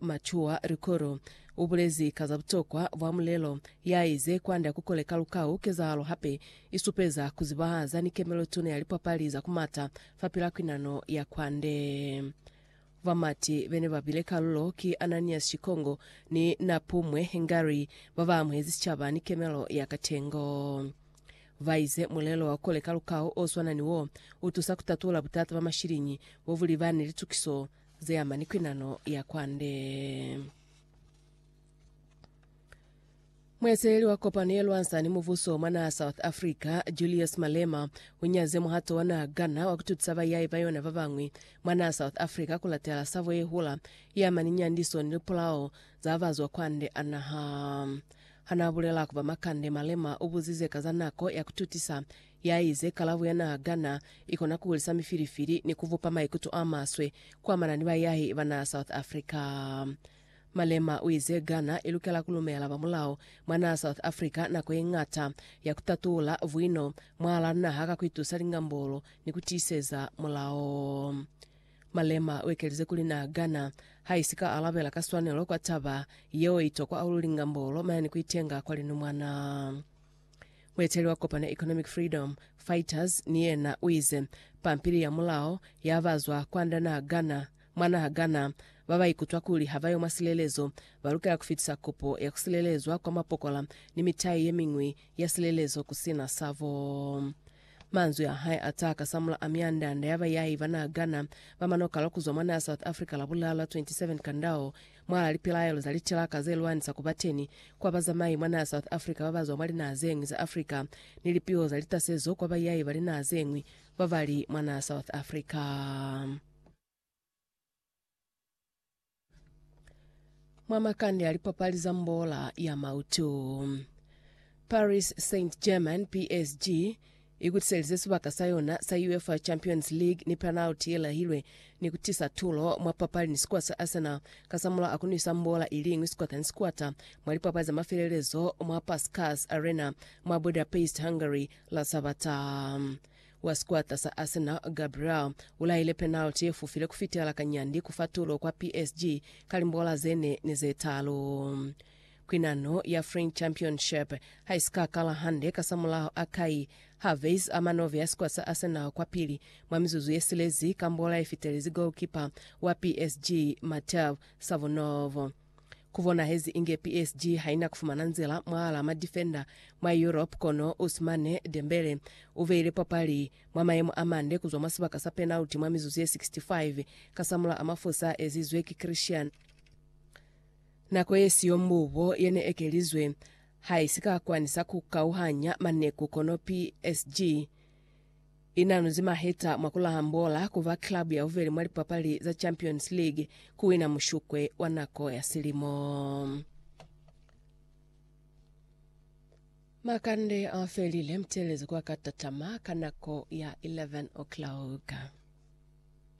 Mature Likolo u bulezi ka za butokwa bwa mulelo ya ize, Kwand'a ku kole ka lukau, kezahalo hape i supeza ku zibahaza ni kemelo tuna ya lipapali za ku mata fapil'a kwinano ya kwande. Bamati be ne ba bile kalulo ki Ananias Shikongo ni Napumwe Ngari ba ba amuhezi sicaba ni kemelo ya katengo. Ba ize mulelo wa ku kole ka lukau o swana ni wo, u tusa ku tatula butata bwa mashiliñi bo bu li ba ni litukiso ze ama ni kwinano ya kwande. Mueteleli wa kopano ye lwansa ni mubuso mwa naha South Africa, Julius Malema, u nyaze muhato wa naha Ghana wa ku tutusa bayai ba yona ba bañwi mwa naha South Africa ku latela sabo ye hula ye ama ni nyandiso ni lipulao za bazwa kwande a naha. Ha n'a bulela ku ba makande, Malema u buzize ka za nako ya ku tutisa Ya ize, Kalabo ya naa gana i kona ku hulisa mifilifili ni ku bupa maikuto a maswe ku amana ni bayahi ba naa South Africa. Malema u ize Ghana i lukela ku lumela ba mulao mwa naa South Africa nako ye ñata ya ku tatula buino mwahalaa naha ka ku itusa lingambolo ni ku tiiseza mulao. Malema u ekelize kuli naa Ghana ha i si ka alabela ka swanelo kwa taba yeo i tokwa hahulu lingambolo maya ni ku itenga kwa linumwana. Mueteli wa kopano ya Economic Freedom Fighters ni yena u ize, Pampili ya mulao ya ba zwa kwanda naha Ghana, mwa naha Ghana, ba ba ikutwa kuli ha ba yo mwa silelezo, ba lukela ku fitisa kopo ya ku silelezwa kwa mapokola ni mitai ye miñwi ya silelezo ku sina sa bo. Manzwi a hae a taha kasamula a myanda-anda ya bayai ba naha Ghana ba manokalwa ku zwa mwa naha South Africa Labulala 27 Kandao Mwala lipilaelo za litilaka ze lwanisa ku ba teni kwa bazamai mwa naha South Africa ba ba zwa mwa linaha ze ñwi za Africa ni lipiho za litasezo kwa baiyai ba linaha ze ñwi ba ba li mwa naha South Africa. mwa makande a lipapali za mbola ya mautu. Paris Saint-Germain, PSG, Ikutiselize sibaka sa yona sa UEFA Champions League ni penalty ye lahilwe ni ku tisa tulo mwa papali ni sikuwa sa Arsenal kasamulaho a ku nwisa mbola i liñwi sikwata ni sikwata mwa lipapali za mafelelezo mwa Puskas Arena mwa Budapest, Hungary, la Sabata. Wa sikwata sa Arsenal, Gabriel, u lahile penalty ye fufile ku fitela kanyandi ku fa tulo kwa PSG ka limbola ze ne ni ze talu. Kwinano ya French Championship ha i si ka kala hande kasamulaho a Kai Havertz a manove ya sikwata sa Arsenal kwapili mwa mizuzu ye silezi ka mbola ye fitelezi golkipa wa PSG Mateu Savonov. Ku bonahezi inge PSG ha i na ku fumana nzila mwahal'a madifenda mwa Europe kono Ousmane Dembele u beile papali mwa mayemo a mande ku zwa mwa sibaka sa penalty mwa mizuzu ye 65 kasamulaho mafosa a ezizwe ki Christian Nako yesiyo mbubo yene ekelizwe haisika kwanisa kukauhanya maneku kono PSG inanuzi maheta mwa kulaha mbola kuba club yabubeli mwa lipapali za Champions League kuwina mushukwe wa nako ya silimo. Makande afelile mutelezo kwa katatama ka nako ya 11 o'clock.